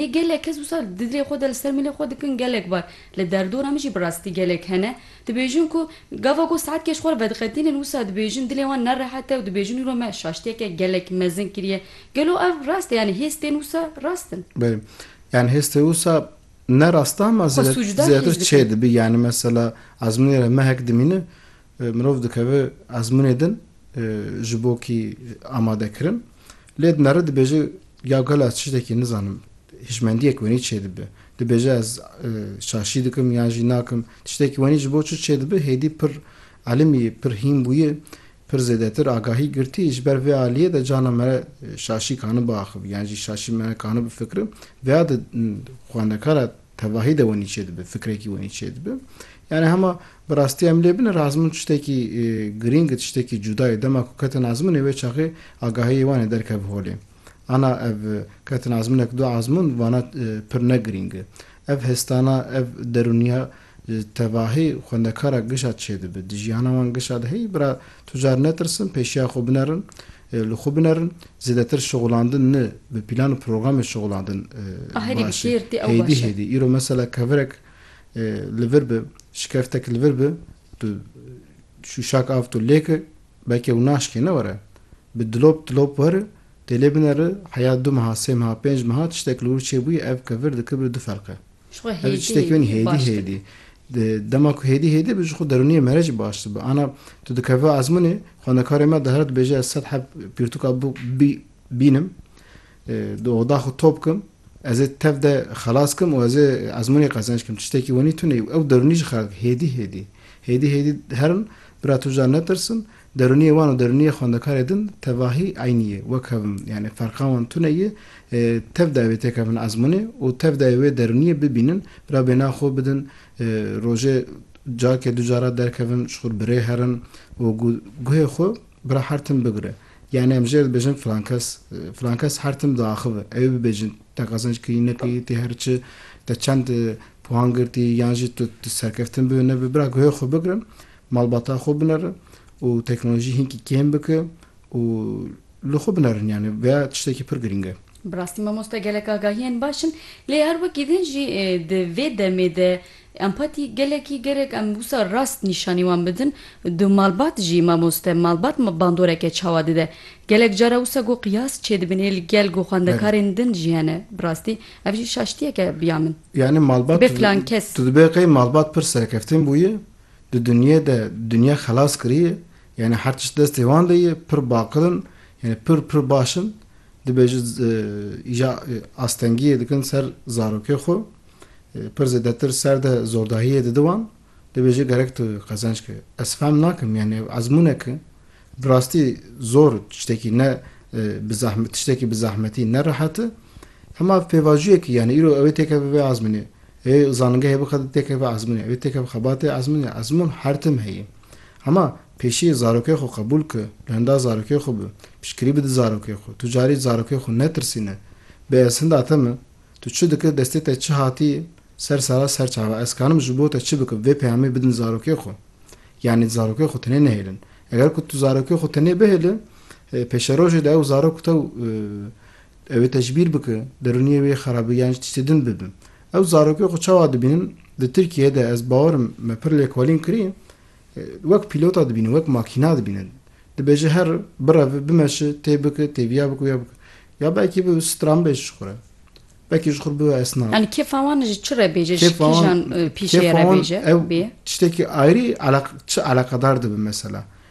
Ê gelek kes wisa di dilê xwe de li ser mîlê xwe dikin gelek bar. Li derdora min jî bi rastî gelek hene, dibêjin ku gava ku saetkê ji xwe re vediqetînin wisa dibêjin dilê wan ne rehet e û dibêjin îro me şaştiyeke gelek mezin kiriye. Gelo ev rast e yanî hêz tên wisa rast in? Belê. Yanî hêz tê wisa ne rast e ama Xwe sûcdar hîs zêdetir dikin. çê dibî. Yanî mesela ezmûnê re mehek dimînin Mirov dikeve ezmûnê din ji bo kî amadekirin. Lê di nere dibêje ya gelo ez tiştekî nizanim. Hişmendiyek wenî çêdibe. Dibêje ez şaşî dikim yan jî nakim. Tiştekî wenî ji bo çi çêdibe hêdî pir elimî pir hîn bûye. Pir zêdetir agahî girtî. Ji ber vê aliyê de cana me re şaşî kanibe axivî yan jî şaşî me kanibe fikire. Vêya de xwendekara Tevahî de wenî çêdibe, fikrekî wenî çêdibe. Yanî hema bi rastî em lê bin ir azmun tiştekî girîng ir, tiştekî cuda ye. Dema ku ketin azmunê wê çaxê agahiyê wan ê derkeve holê. Ana ev ketin azmunek du azmun vana pir ne girîng e. Ev hestana, ev derûniya tevahî xwendekara gişa çêdibe. Di jiyana wan gişa de heyî bira tu car netirsin, pêşiya xwe binerin. Li xwe binerin, zêdetir şixulandin ni bi pîlan û programê şixulandin baş e. Hêdî hêdî îro mesela kevirek li vir bi, şikeftek li vir bi, tu şûşak av tu lêki belkê ew naşkê ne were. Bi dilop dilop weri, tê lê bineri, heya du meha, sê meha, pênc meha tiştek li wir çêbûyî ev kevir dikibir du ferq e. Ji xwe hêdî hêdî baş dibe. Ev tiştekî win hêdî hêdî. Di dema ku hêdî hêdî bi ji xwe derûniyê me re jî baş dibe. Ana tu dikeve ezmûnê xwendekarê me dihera dibêje ez sed heb pirtûka bûk bî bînim di oda xwe top kim ez ê tev de xelas kim û ez ê ezmûnê qezenc kim tiştekî winî tune ye û ew derûnî jixwe re dike hêdî hêdî. Hêdî hêdî herin bira tu ja netirsin Derûniyê wan û derûniyê xwendekarê din tevahî eynî ye. Wek hev in. Yanî ferqa wan tune ye. Tev dayê wê têkevin ezmûnê û tev dayê wê derûniyê bibînin. Bira bêhna xwe bidin. Rojê carkê du cara derkevin, ji xwe re bi rê herin û guhê xwe bira her tim bigire. Yanî em ji yê re dibêjin filan kes, filan kes her tim diaxive. Ewê bibêjin te qezenc kirî nekirî, tê her çi, te çend puhan girtî yan jî tu serkeftin bi wê ne bi. Bira guhê xwe bigirin. Malbata xwe binere û teknolojî hinkî kêm bike û li xwe binerin yanî vê tiştekî pir girîng e. Bi rastî mamoste gelek agahiyên baş in lê her wekî din jî di vê demê de empatî gelekî gerek em wisa rast nîşanî wan bidin. Du malbat jî mamoste malbat bandoreke çawa dide. Gelek cara wisa ku qiyas çêdibin ê li gel ku xwendekarên din jî hene. Bi rastî ev jî şaştiyek e biya min. Yanî malbat tu dibê qey malbat pir serkeftin bûye Di dunyê de dunya xelas kiriye, yanî her tişt destê wan de ye, pir baqil in, yanî pir pir baş in, dibê ji îja astengiyê dikin ser zarokê xwe, pir zêdetir ser de zordahiyê didi wan, dibê jê gerek tu qezenc ke. Ez fehm nakim, yanî ev ezmûnek e, bi rastî zor tiştekî ne bi zehmet tiştekî bi zehmetî ne rehet e, hema pêvajiyek e, yanî îro ew ê têkeve vê azmînê, Ê zanîngehê bixe di têkevê ezmûnê. Wê têkev xebatê ezmûnê. Ezmûn her tim heye. Hema pêşî zarokê xwe qebûl ki, li hinda zarokê xwe bi, piştgirî bi di zarokê xwe. Tu carî zarokê xwe netirsîne. Bê ez hinda te me, tu çi dikir, destê te çi hatîye ser sera ser çava, ez karim ji bo te çi bikim, vê peyamê bidin zarokê xwe. Yanî zarokê xwe tenê nehêlin. Eger ku tu zarokê xwe tenê bihêli, pêşerojê de ew zarok tew, Ew ê tecbîr bike derûniyê wê xerab be yan jî tiştê din bibe. Ew zarokê xwe çawa dibînin? Di Tirkiyeyê de ez bawer im me pir lêkolîn kirî wek pîlota dibîne, wek makîna dibîne. Dibêje her bireve, bimeşe, tê bike, têviya bike, wiya bike. Ya belkî bibe stranbêj ji xwe re. Belkî ji xwe re bibe esnaf. Yanî kêfa wan ji çi re bêje, ji kîjan pîşeyê re bêje? Kêfa wan ew tiştekî ayrî çi eleqedar dibe mesela.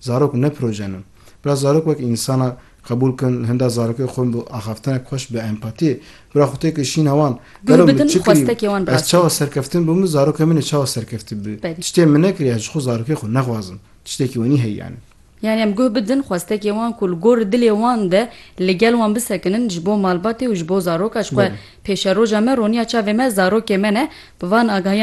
Zarok ne proje ne. Bira zarok wek însan e, qebûl kin li hinda zarokê xwe min bi axaftinek xweş bi empatiyê. Bira xwe tê kir şîn e wan. Gelo min çi kirîm? Ez çawa serkeftin bûm min zarokê min ê çawa serkeftî bi? Tiştê min nekiriye ez ji xwe zarokê xwe nexwazim. Tiştekî wenî heye yanî. Yanî em guh bidin xwestekê wan ku li gor dilê wan de li gel wan bisekinin ji bo malbatê û ji bo zaroka ji xwe. Pêşeroja me roniya çavê me zarokê me ne. Bi van agahiyan